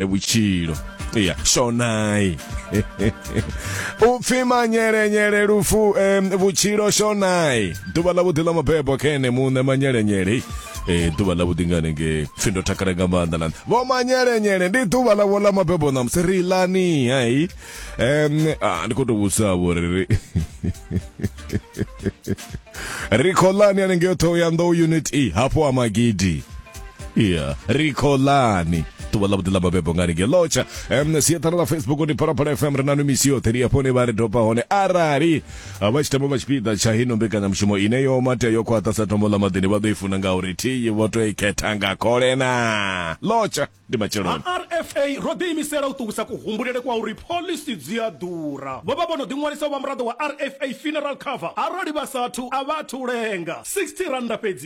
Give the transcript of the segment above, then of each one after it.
e vhutshilo ya shonai u pfi manyelenyele lufu em, vhutshilo shonai ḓuvha ḽa vhuḓi ḽa mabebo kene muṋe manyelenyele Eh, ḓuvha ḽa vhuḓi ngane nge pfi ndo takala nga maanḓa na vho manyelenyele ndi ḓuvha ḽavho ḽa mabebo ṋamusi ri lani hai em ah, ndi khou tou vhudzisa vho ri ri ri khou lani hanengei ṱhoho ya nḓou unit e hafho ha magidi yeah rikholani ḓuvha ḽa vhuḓi ḽa mabebo ngani nge lotsha um siaṱhara ḽa facebook ndi phalaphala fm ri na no misi yoṱhe ri ya fhone vha ri dopa hone arali vha tshi tamba vha tshipiḓa tsha hino mbekanyamushumo ine yo matea yo khwaṱha sa tombo ḽa maḓini vha ḓo i funa nga uri thiyi vho to i khetha nga khole na lotsha ndi matsheloni rfa ro ḓiimisela u ṱuwisa kuhumbulele kwa uri pholisi dzi a ḓura vho vha vho no ḓiṅwalisa u vha muraḓo wa rfa funeral cover arali vha sathu a vha athu lenga 60 randa fhedzi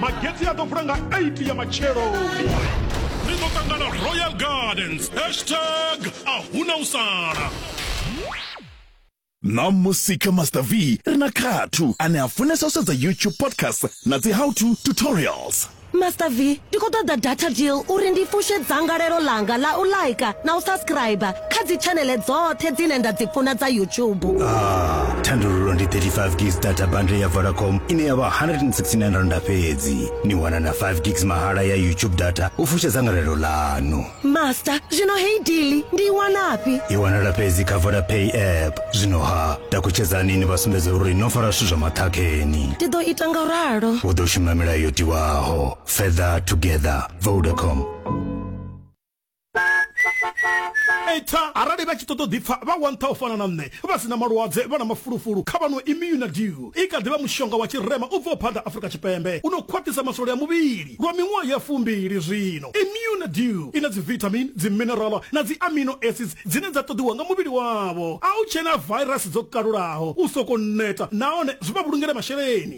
magetse a ḓo vula nga 8 ya matsheloni ri ḓo ṱangana royal gardens hashtag a huna u sala na musika master v ri na khathu ane a funesa u sedza youtube podcast na dzi how to tutorials master v ndi khou ṱoḓa data deal uri ndi fushe dzangalelo ḽanga ḽa u laika na u subscribe kha dzitshanele dzoṱhe dzine nda dzi funa dza youtube ah, thandululo ndi 35 gigs data bundle ya vodacom ine ya vha 169 randa fhedzi ni wana na 5 gigs mahala ya youtube data u fusha dzangalelo ḽanu master zwino hei dili ndi i wanafhi i wanala fhedzi kha vodapay app zwino ha takutshedzani ni vha sumbedze uri no fara zwithu zwa maṱhakheni ndi ḓo ita nga ralo u ḓo shuma milayo yo tiwaho feather together vodacom eita arali vha tshi ṱoḓa u ḓipfa vha wantha u fana na nṋe vha si na malwadze vha na mafulufulu kha vhano immunadew i kha ḓivha mushonga wa tshirema u bvaho phanḓa afurika tshipembe u no khwaṱhisa maswole a muvhili lwa miṅwaha ya fumbili zwino immunadew i na dzivitamin dziminerala na dzi amino acids dzine dza ṱoḓiwa nga muvhili wavho a u tshena virus dzo kalulaho u soko neta nahone zwi vha vhulungele masheleni